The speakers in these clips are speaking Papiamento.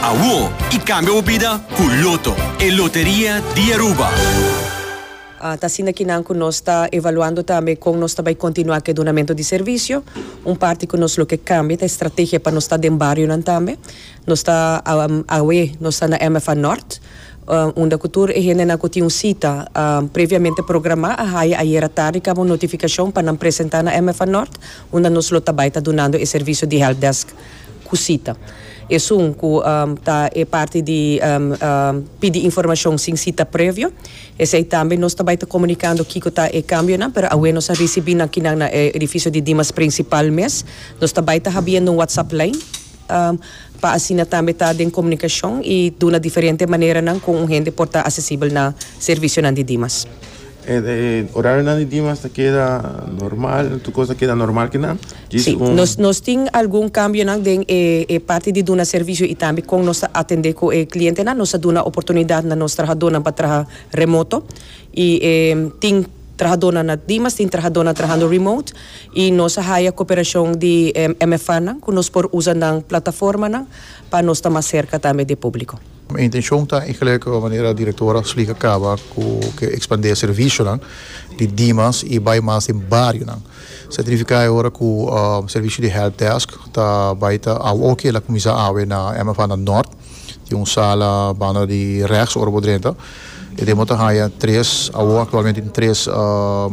Awo y cambia bo bida cu Lotto, e loteria di Aruba. Ta asina ki nan cu nos ta evaluando tambe con nos ta bay continua cu e dunamento di servicio. Un parti cu nos lo ke cambia ta e strategia pa nos ta den barionan tambe. Nos ta awe nos ta na MFA Nort unda cu tur e hendenan cu tin un cita previamente programa a haya ayera tardi caba un notificacion pa nan presenta na MFA Nort unda nos lo ta bay ta dunando e servicio di helpdesk. kusita. Esun ku ta e parti di pidi informashon sin sita previo. Esei tambe nos ta bai ta komunikando kiko ta e kambionan, pero awe nos a risibí nan kinan na e edifisio di Dimas Prinsipal mes. Nos ta bai ta habiendo un whatsapp lijn pa asina tambe ta den komunikashon i duna diferente maneranan ku un hende por ta asesibel na servisionan di Dimas. Orarionan di Dimas ta keda normal, tur kos ta keda normal kinan? Djis un. Si, nos nos tin algun kambionan den e e parti di duna servisio i tambe kon nos ta atendé ku e klientenan. Nos a duna oportunidat na nos trahadónan pa traha remoto i e tin trahadónan na Dimas, tin trahadónan trahando remote i nos a haya koperashon di e MFAnan ku nos por usa nan plataformanan pa nos ta mas serka tambe di e públiko. Mi intencion ta e gelukkige manera directora Slick a caba cu ke expande e servicionan di dimas y bay mas den barionan. Sa significa e ora cu servicio di help desk ta bay ta awe oki el a cuminsa awe na MFAnan Nort. Tin un sala banda di rechts ora bo drenta. E den bo ta haya tres, awo actualmente tin tres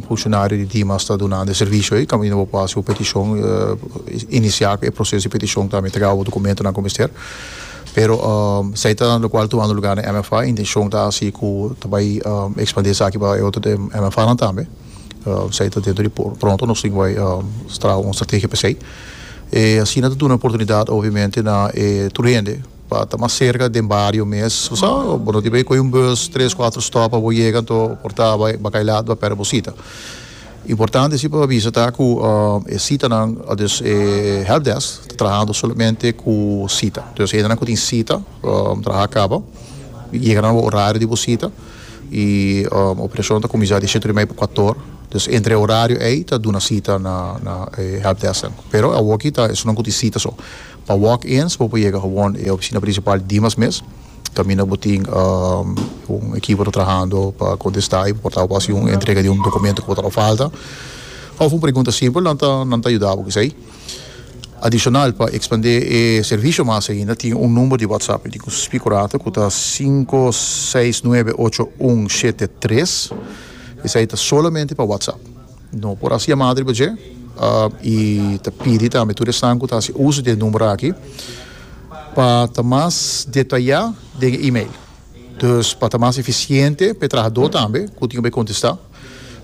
funcionario di dimas ta dunando e servicio ey. Caminda bo por haci un peticion, inicia cu e proceso di peticion tambe ta caba bo documentonan cu mester. Pero esaki ta locual tumando lugar den MFA y intencion ta haci cu ta bay expandi esaki pa e otro de MFAnan tambe. Esaki ta dentro di pronto nos tin bay traha un strategia pa esey. E asina ta duna oportunidad obviamente na e tur hende pa ta mas cerca den bario mes. Bo sa, bo no tin bay coge un bus tres, cuatro stop pa bo yega, anto por ta bay bakailat, bay perde bo cita. Importante si pa avisa ta cu e citanan, dus e helpdesk ta trahando solamente cu cita. Dus hendenan cu tin cita traha caba y yega nan bo horario di bo cita y operacion ta cuminsa di siete hora y media pa cuatro hora. Dus entre e horario ey ta duna cita na e helpdesknan. Pero awo aki ta esun nan cu tin cita so. Pa walk-ins bo por yega gewoon e oficina principal Dimas mes, caminda bo tin un equipo ta trahando pa contesta y bo por ta haci un entrega di un documento cu bo ta lo falta of un pregunta simpel nan ta nan ta yuda bo cu esey. Adicional pa expande e servicio mas ainda tin un number di WhatsApp y tin cu spi cu rata cu ta cinco seis nuebe ocho un shete tres esey ta solamente pa WhatsApp. No por hasi e matri pa dje i ta pidi tambe tur esnan ku ta hasi uso di e number aki pa ta mas detayá den e email. Dus pa ta mas efisiente pa e trahadó tambe ku tin ku bai kontestá.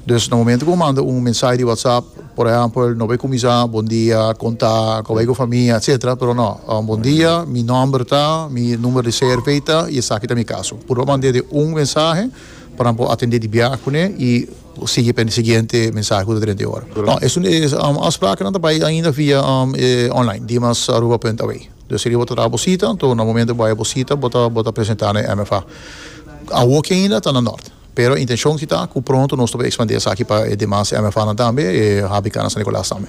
Dus na momentu ku bo manda un mensahe di WhatsApp, por ehèmpel, no bai kuminsá bondia, kontá, kòbai ku famia, etsetera, pero no, bondia, mi nòmber ta, mi number di CRV ta i esaki ta mi kaso. Puru a manda e di un mensahe pa nan por atendé di biaha kuné i Bo sigui pa e siguiente mensahe cu ta drenta e ora. No, e afsprakennan ta bay ainda via online, dimasaruba.aw. Dus seria bo ta traha bo cita, anto na momento bo bay bo cita bo ta bo ta presenta na e MFA. Awoki ainda ta na Nort, pero e intencion si ta cu pronto nos ta por expandi esaki pa e demas MFAnan tambe, e HBKnan San Nicolas tambe.